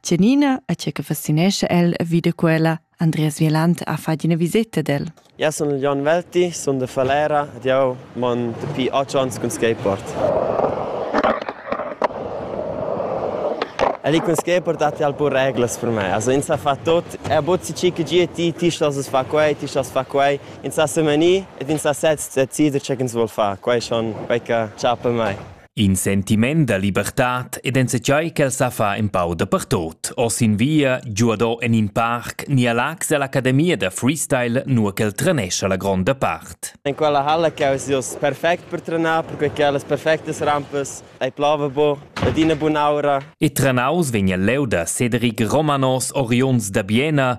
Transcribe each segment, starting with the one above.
Tgenina a tge che fascinescha el vi da quella Andreas Vieland ha fatg ina viseta d'el. Ja, sun Jon Welti, sun de Falera ed jau mon dapi otg onns cun skateboard. El è cun skateboard datti al pur reglas per me. Also ins ha fatto tot, er bozzi cica gie ti, ti stas fa quei, ti stas fa quei. Ins ha semenì ed ins ha sez decider che ins vuol far. Quei schon quei che chapa mei. In sentiment da libertad ed enzatgei ch'el sa fa empau dapertut, oz in via, giuado en in parc ni a Laax ell'academia da freestyle, nua ch'el trenescha la gronda part. En quella halla che eis ius perfect per trenar, perquei che las perfectas rampas ei plava bu ed ina bun'aura. E trenaus vegn el leu da Cedric Romanos oriunds da Biena,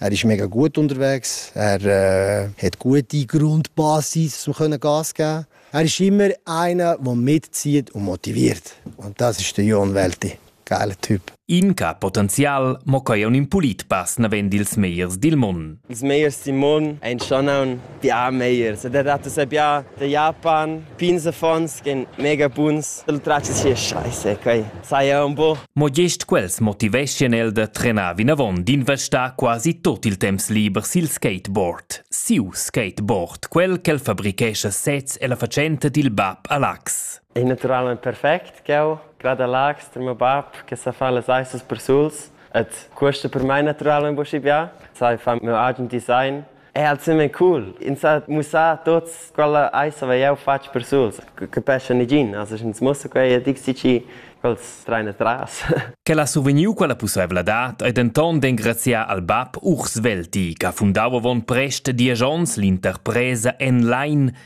Er ist mega gut unterwegs. Er äh, hat gute Grundbasis, um Gas zu geben. Er ist immer einer, der mitzieht und motiviert. Und das ist der Jon Welti. Geile Typ. Inca potenzial mo quai un impulit pass naven dils meiers dil mon. Ils meiers dil mon ein schon ein Pià megliers. Ed adatto sai pià da Japan. Pins affons ch'en mega buns. Il tratg sia scheise, quei sai jau un po. Mo gest quels motiveschien el da trenar vinavon, d'investar quasi tot il temps liber sil skateboard. Siu skateboard, quel ch'el fabrichescha sez e la fatschenta dil bab a Lax. È naturalment perfect ch'jeu grada Lax tar meu bab che sa fa las eisas persuls. Et questa per mai naturalmente un po schi bia. Sai fa meu agen design È ensemen cool. Ins ha mussà tots quella ais hava jau fatg per suls. Capescha negin, as ins mussa quei e dixi chi quels train atras. Quel ha survegniu quella pusseivladad e denton d'engraziar al bab Urs Velti, che ha fundau avon prest diesch onns l'interpresa Enline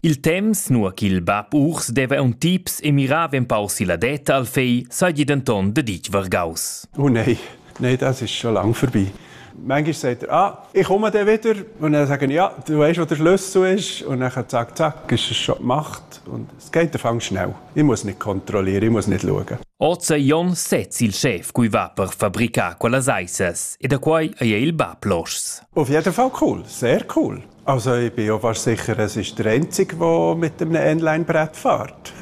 Il temps, nua ch'il bab Urs deva un tips e mirava empau silla detta al fei, seigi denton deditg vargaus. Oh nei, nei, das ist schon lang vorbei. Manchmal sagt er, ah, ich komme dann wieder. Und dann sagen ja, du weißt, wo der Schlüssel ist. Und dann zack, zack, ist es schon gemacht. Und es geht am schnell. Ich muss nicht kontrollieren, ich muss nicht schauen. Ozer Jon sez il chef cui va per fabricar quellas aissas e da quai ei il bab loschs. Auf jeden Fall cool, sehr cool. Also ich bin auch fast sicher, es ist der Einzige, der mit einem Inline-Brett fährt.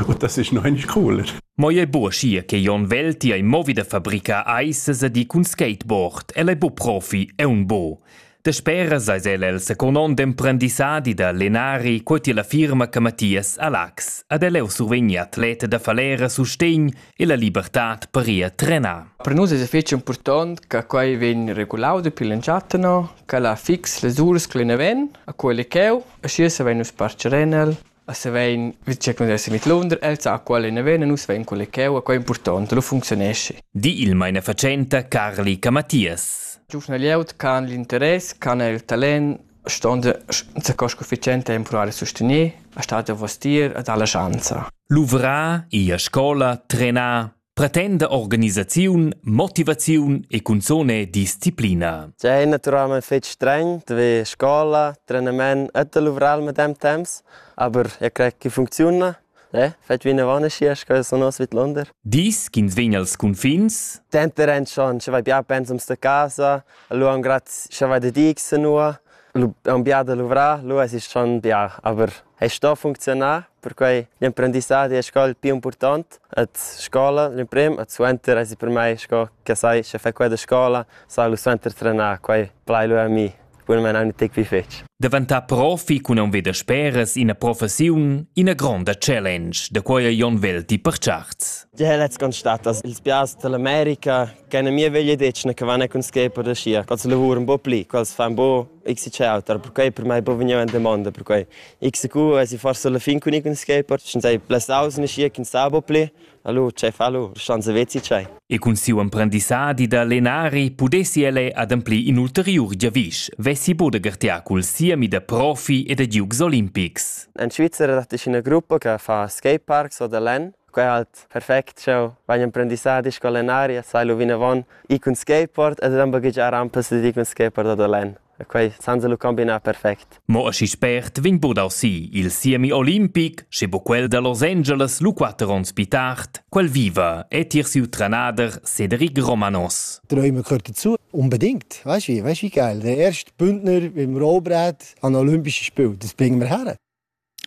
Und das ist noch einmal cooler. Moie Burschi che Jon Velti ai movi da fabrica aises di cun skateboard, el è bu profi e un bo. De speras eis el el secondond emprendissadi da Lenari quoti la firma che Mathias Alax ad el eu survegni atleta da falera sustegn e la libertad paria trenà. Per nus es fich impurtant che quai vegn regulau dapi l'entschatta no, che la fix las uras che ne ven a quelle cheu e schi se vein nus parcher en el a se vein vi che kun des mit Lunder el sa quale ne ven nus vein quelle cheu a quai impurtant lo funzionesci di il meine facenta Carli Camatias Giufnaliaut can l'interess, can el talent Stond sco sufficiente a impruar e sustener, ha stat davos tier ed ha la schanza. Luvrar, ir a scola, trenar, pretenda organisaziun, motivaziun e cunzone disciplina. C'è naturalmente fetg streng, dove scola, trenament e luvrar al medem temps, aber ich kriege funziona. Eh, fetg vinavon aschi sco sun nus vidlunder. Dis ch'ins vegn als cunfins? Denter en schon, sche vai bia pensums da casa, lu am grad, sche vai da dig sanua, lu am bia da luvrar, lu exist schon bia, aber ei sto funcziunar, perquei l'emprendissadi e scola il pli impurtant et scola l'emprim et suenter esi per mei sco che sai, sche fai quella scola, sai lu suenter trenar, quei plai lu a mi. bunamain anc detg pli fetg. Daventà profi cun aunc veder speras ina professiun, ina gronda challenge, da quai Jon Velti per charts. Ja letzt ganz statt, dass ils bias dell'America keine mir veglie decne che vanno con schepo da scia, als lavor un po pli, als fa un po x ciautar, perché per mai po venire in domanda, perché x cu e si forse la fin con con schepo, schon sei plus aus in scia che sta un po pli, Hallo, chef, hallo, schon savezi tgei? E cun siu emprendissadi da lenari pudessi el ademplir in ulteriur giavisch, vessi bude gartiar cul siemi da profi e da giugs olimpics. In Svizzera dat ich eine Gruppe che fa skateparks oder Len. Quei halt perfekt schau, wenn emprendissadi sco lenari, sai lu vinavon, i cun skateboard ed dann baghegiar ampas ed i cun skateboard oder Len. e quei senza lu combinar perfect. Mo aschi spert vegn budau si il siemi olimpic, sche bu quel da Los Angeles lu quatter onns pi tard, quel viva e tier siu trenader Cedric Romanos. Träume gehört dazu. Unbedingt. Weißt du, weißt du geil? Der erste Bündner im Rollbrett an Olympische Spiele. Das bringen wir her.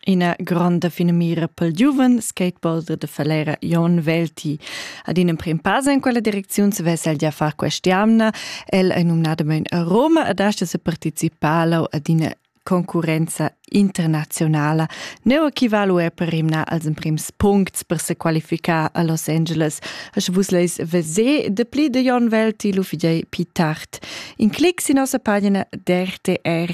Ina gronda finamira pel giuven skateboarder da Falera Jon Welti. Ad in emprim pass in quella direcziun svess el gia far quest'jamna. El è numnadamain a Roma ed asta se participar ad ina concurenza internazionala. Neu equivalu è per rimnar als emprims puncts per se qualificar a Los Angeles. Sche vus leis vese de pli de Jon Welti lu fidei pi tard. In clic sin nossa pagina d'RTR.